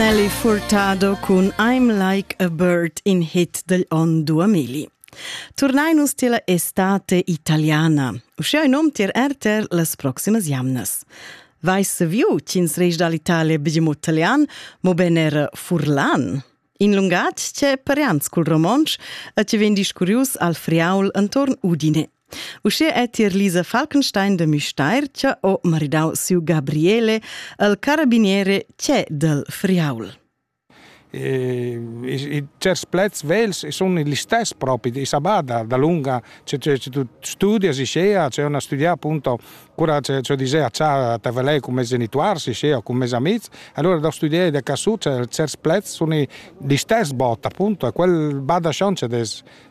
Nelly Furtado cun I'm Like a Bird in hit degl onn 2000. Turnai nus tier la estate italiana. Uschia in um tier RTR las proximas jamnas. Vais viu ch'ins reis dall'Italia begium italian, mo ben era furlan. In lungatg che parians cul romontsch e che vegn discurius al friaul entorn Udine. Uschia è tier Lisa Falkenstein de Müstair che ho maridau siu Gabriele, il carabiniere C'è del Friaul. E, i, i certs plets vels sono gli stessi propri di Sabada, da lunga c'è, c'è, c'è tu studia si scea, c'è una studia appunto cura c'è, c'è disea c'ha te velei con mes genitori si scea, con mes amici, allora da studiare da casu c'è certi plets sono gli stessi botta appunto, e quel bada chance des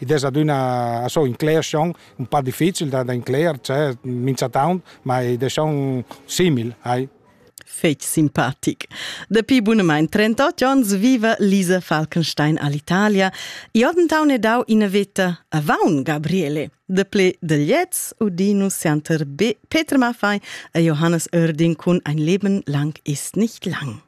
ed es adüna so incler schon un pa difficil da, da incler, cioè minchatant, ma ed es schon simil, hai. Fetg simpatic. Dapi bunamain 38 onns viva Lisa Falkenstein all'Italia. Iordentaun è dau ina veta avaun Gabriele. Deple de Liez, Udinus Santer B. Peter Maffei e Johannes Oerding cun Ein Leben lang ist nicht lang.